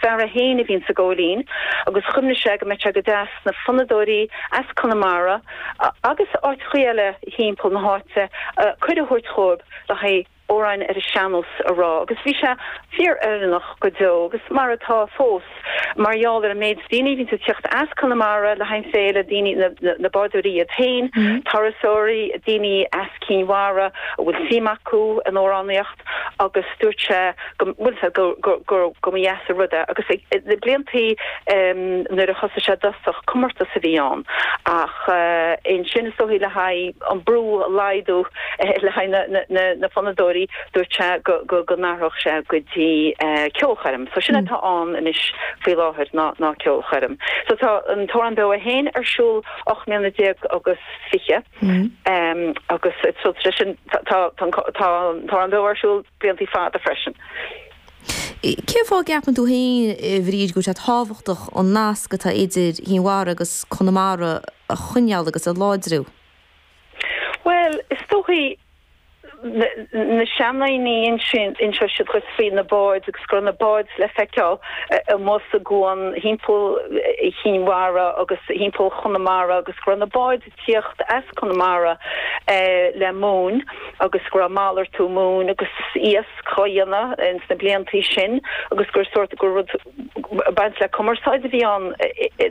Fear é féin a bhíonn sa Góilín agus chuimhnigh sé go mbeadh sé go deas na fonnadóirí as Conamara agus áiteachaí eile thimpeall na háite cuireadh a thabhairt dhóibh le haghaidh amhráin ar an sean-nós a rá agus bhí sé fíor oiriúnach go deo agus mar atá fós mar gheall ar an méid daoine a bhíonns ag tiocht as Conamara le haghaidh an féile, daoine, na bádóirí iad féin, turasóirí, daoine as Cinn Mhara a bhfuil suim acu in amhránaíocht. agus dúirt sé go bhfuil sé, go mba dheas an rud é. Agus na bliantaí nuair a thosaigh sé i dtosach, comórtas a bhí ann. Ach ansin, is dóichí le haghaidh an brú a laghdú le haghaidh na fonnadóirí, dúirt sé go n-athródh sé go dtí ceolchoirm. So sin atá ann anois faoi láthair ná ceolchoirm. So tá an Torann Beo é féin ar siúl 18 mbliana agus 20. agus tríd sin tá ar ndóigh ar siúl blianta fada freisin. Cén fáth a gceapann tú féin, a Bhríd, go bhfuil sé tábhachtach an nasc atá idir Chinn Mhara agus Conamara a choinneáil agus a láidriú? Bhuel, is dóichí na seandaoine ansin, inseoidh siad dhuit faoi na báid agus go raibh na báid le feiceáil amuigh sa gcuan thimpeall Chinn Mhara agus thimpeall Chonamara agus go raibh na báid ag tíocht as Conamara le móin agus go raibh malartú móin agus iasc á dhéanamh ins na blianta sin agus gur sórt, gur rud ag baint le cumarsáid a bhí ann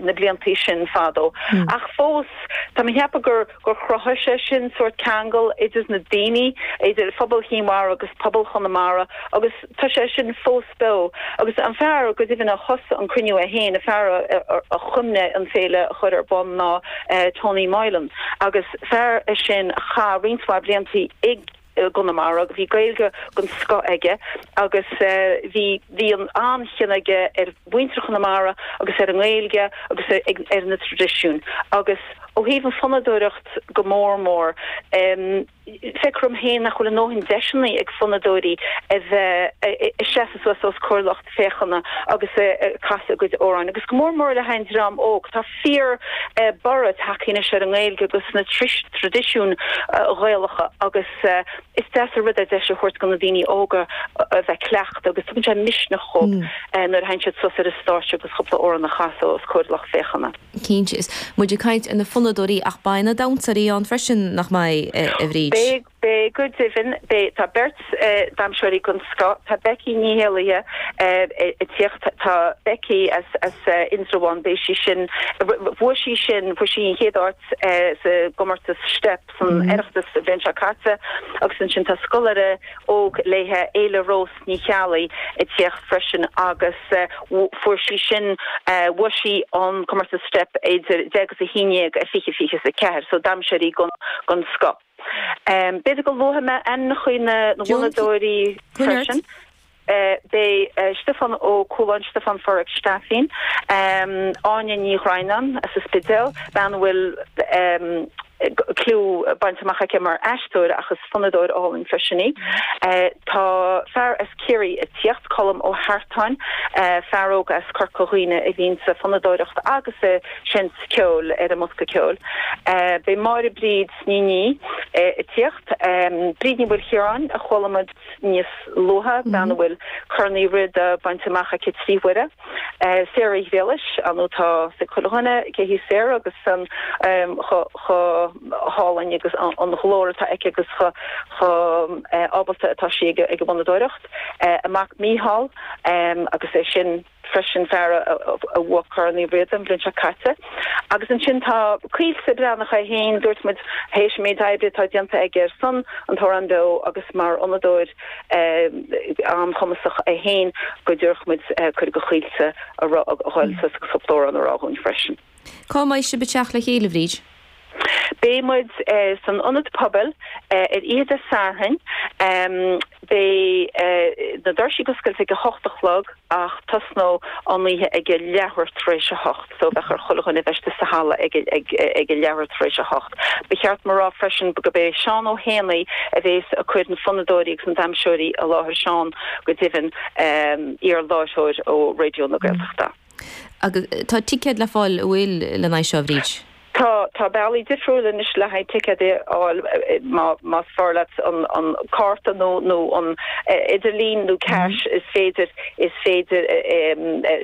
na blianta sin fadó ach fós, tá mé ag ceapadh gur. gur chruthaigh sé sin sórt ceangail idir na daoine, idir phobal Chinn Mhara agus pobal Chonamara agus tá sé sin fós beo. Agus an fear, go deimhin, a thosaigh an cruinniú é féin, an fear a chuimhnigh an féile a chur ar bun ná Tony Moylan agus fear é sin a chaith roinnt mhaith bliantaí ag. i gConamara. Bhí Gaeilge den scoth aige agus bhí an-chion aige ar mhuintir Chonamara agus ar an nGaeilge agus ar na traidisiúin agus ó thaobh an fonnadóireacht go mór mór. Feicim féin nach bhfuil a ndóthain deiseanna ag fonnadóirí a bheith ag seasamh suas os comhair lucht. féachana agus ag casadh a gcuid amhráin agus go mór mór le haghaidh an dream óg. Tá fíor borradh tagtha anois ar an nGaeilge agus na traidisiúin Ghaelacha agus is deas an rud é deis a thabhairt do na daoine óga a bheith cleachta agus tugann sé misneach dhóibh nuair a thagann siad suas ar an stáitse agus cúpla amhrán a chasadh os comhair a lucht féachana. Cinnte, is muid ag caint ar na fonnadóirí ach beidh na damhsóirí ann freisin, nach mbeidh, a Bhríd? Beidh, Beidh, go deimhin, beidh. Tá beirt damhsóirí den scoth, tá Becky Ní Éallaithe ag tíocht, tá Becky as Indreabhán, beidh sí sin, bhuaigh sí sin, bhuaigh sí an chéad áit sa gcomórtas Steip san Oireachtas an bhliain seo caite agus ansin tá scoláire óg léithe, Éile Rós Ní Cheallaigh ag tíocht freisin agus fuair sí sin, bhuaigh sí an comórtas Steip idir deich is a haon dhéag i fiche fiche is a ceathair, so damhsóirí den scoth. B'fhéidir go luafaidh mé ainmneacha cuid de na bhfonnadóirí freisin. Beidh Stiofán Ó Cualáin, Stiofán Forrest Staifín, Áine Ní Dhroighneáin as an Spidéal, bean a bhfuil clú bainte amach aici mar aisteoir ach is fonnadóir álainn freisin í. Tá fear as Ciarraí ag tíocht, Colm Ó hEartáin, fear óg as Corca Dhuibhne a bhíonns ag fonnadóireacht agus ag seinnt ceoil ar an mbosca ceoil. Beidh Máire Bríd, Nainín ag tíocht, Bríd Ní Mhaoilchiaráin, a chualamar níos luaithe, bean a bhfuil Corn Uí Riada bainte amach aici trí huaire, Sarah Ghriallais, ó tá a fhios ag chuile dhuine cé hí Sarah agus chomh hálainn agus an glór atá aici agus chomh ábalta atá sí ag an bhfonnadóireacht, a mac Mícheál agus é sin. freisin fear a bhuaigh Corn Uí Riada an bhliain seo caite. Agus ansin tá Caoilte Breatnach é féin, dúirt muid, théis an méid oibre atá déanta aige ar son An tAmhrán Beo agus mar fhonnadóir an-chumasach é féin, go dtabharfadh muid cuireadh do Chaoilte a dhul suas agus cúpla amhrán a rá dhúinn freisin. Cá mbeidh sibh ag teacht le chéile, Bhríd? Beidh muid san Ionad Pobail ar oíche Dé Sathairn. Beidh na doirsí oscailte ag a hocht a chlog ach tosnóidh an oíche ag a leathuair tar éis a hocht, so bheadh ar chuile dhuine a bheith istigh sa halla ag a leathuair tar éis a hocht. Ba cheart dom a rá freisin gurb é Seán Ó hÉanaí a bhéas ag cur na fonnadóirí agus na damhsóirí i láthair, Seán, go deimhin, iarláithreoir ó Raidió na Gaeltachta. Agus tá ticéid le fáil, a bhfuil le n-aghaidh seo, Bhríd? Tá, tá bealaí difriúil anois le haghaidh ticéid a fháil, má, más fearr leat an, an cárta nó, nó an t-idirlíon nó cash, is féidir, is féidir, eh,